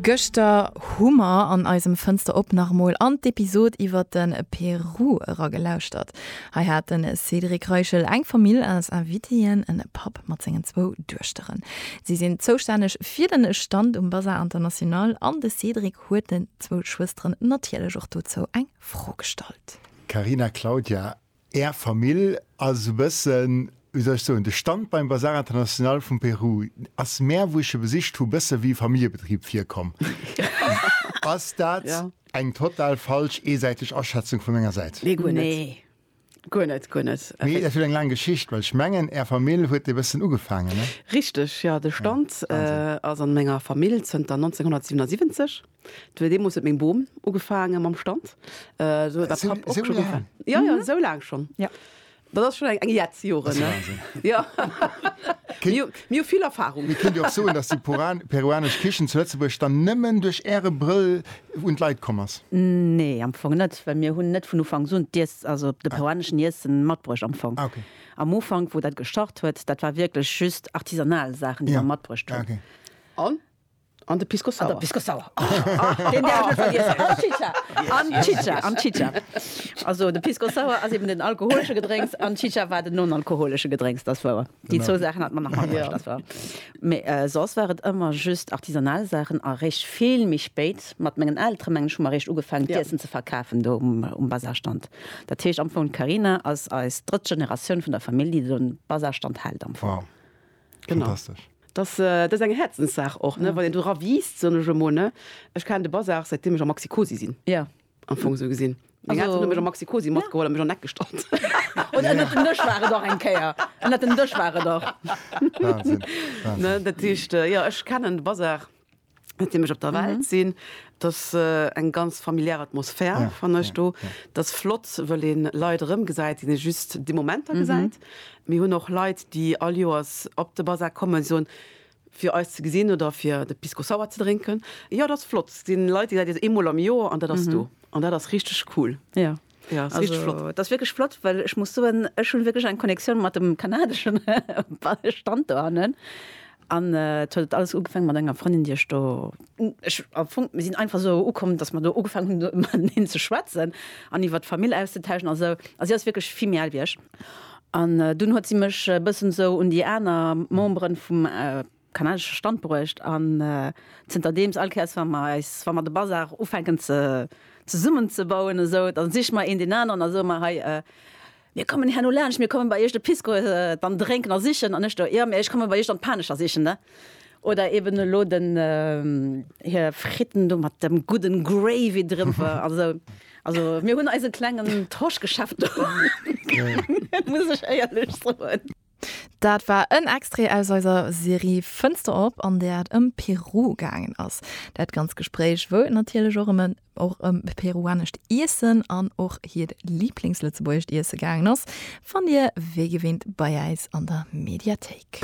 Gëschter hu mer an eisem Fënster op nach emol an d'Episod iwwert de Peru era gelauschtert. Hei hat de Cédric Reichel eng Famill als Invitéen, en Papp mat sengen zwou Duechterën. Si sinn zoustänneg fir den Stand um Bazar International an de Cédric huet den zwou Schwësteren natierlech och dozou eng Fro gestallt. Carina, Claudia, Är Famill ass e bëssen, wéi soll ech soen, de Standbein Bazar International vum Peru ass mär, wou ech e besicht hu, bësse wéi e Familljebetrib virkomm. Ass dat eng total falsch, eesäiteg Aschätzung vu menger Säit? Nee, guer net. Guer net, guer net. Mee dat huet eng laang Geschicht, well ech mengen, Är Famill huet e bëssen ugefaangen, ne? Richteg, jo. De Stand ass a menger Famill zënter 1977. Well deemols huet meng Bom ugefaange mam Stand. Äh, do huet der Papp och schon ugefaangen. Ja, ja, esou laang schon. Ja. Dat ass schon eng Jetz Joren, ne? Ja. Mir hu vill Erfahrung. Mir kéint jo och soen, dass déi peruanesch Kichen zu Lëtzebuerg dann nëmmen duerch Äre Brëll un d'Leit komm ass. Nee, am Fong net, well mir hunn net vun Ufanks un d'Iess, also de peruaneschen Iessen matbruecht am Fong. Ah, okay. Am Ufank, wou dat gestart huet, dat war wierklech just artisanal Saachen, déi mer matbruecht hunn. Ah, okay. An An de Pisco Sour. An de Pisco Sour. Ach, deen däerf ech net vergiessen. An d'Chicha. An d'Chicha, an d'Chicha. Also de Pisco Sour ass eben den alkoholesche Gedrénks an d'Chicha war den non-alkoholesche Gedrénks, dat wouer. Déi zwou Saachen hat mer nach matbruecht, dat wouer. Mee soss war et ëmmer just artisanal Saachen a réischt vill méi spéit, mat mengen Eltere mengen ech, hu mer réischt ugefaangen d'Iessen ze verkafen do um Bazarstand. Dat heescht am Fong d'Carina ass eis drëtt Generatioun vun der Famill, déi do den Bazarstand hält am Fong. Genau. Dass dass eng Häerzenssaach och ne wann een dora wiisst soen ech emol ne. Ech kennen de Bazar säit deem ech am Maxi-Cosi sinn. Jo. Am Fong esou gesinn. Meng Elteren hu mech am Maxi-Cosi matgeholl a mech an Eck gestallt. Un ënnert dem Dësch war et och eng Kéier. Ënnert dem Dësch war et och. Wahnsinn. Wahnsinn. Ne dat heescht jo ech kennen de Bazar. Net deem ech op der Welt sinn, et ass eng ganz familiär Atmosphär fannen ech do. Et ass flott, wëll ee Leit erëmgesäit, déi ee just déi Momenter gesäit. Mir hunn och Leit, déi all Joers op de Basar kommen, soen, fir eis ze gesinn oder fir de Pisco Sour ze drénken. Jo, et ass flott. Et si Leit, déi gesäit ee eemol am Joer an dat ass do. An dat ass richteg cool. Ja, ass richteg flott. Also, dat ass wierklech flott, well ech muss soen, ech hunn wierklech eng Connectioun mat dem kanadeschen Stand do hannen. An et huet alles ugefang mat enger Frëndin, déi ech do, ech, am Fong, mir sinn einfach esou ukomm, dass mer do ugefang hunn mateneen ze schwätzen an iwwert d'Famill auszetauschen a sou. A si ass wierklech vill méi al wéi ech. An dunn huet si mech e bëssen esou un déi aner Memberen vum kanadesche Stand bruecht an zënterdeems all Kéiers wa mer eis, wa mer de Bazar ufänken ze zesummen ze bauen esou, da siche mer een deen aneren a soe mer, hei mir kommen herno laanscht, mir kommen bei iech de Pisco dann drénken a sichen an ech do, jo, mä ech komme bei iech dann d'Panescher sichen ne oder eben elo den hir Fritten do mat dem gudden Gravy driwwer an esou. Also mir hunn eise klengen Tauschgeschäft do muss ech éierlech soen. Dat war en Extrait aus eiser Serie Fënster op, an där et ëm Peru gaangen ass. Dat ganzt Gespréich wou natierlech och ëm en och ëm peruanescht Iessen an och hiert Liblingslëtzebuergescht Iesse gaangen ass, fannt Dir wéi gewinnt bei äis an der Mediathéik.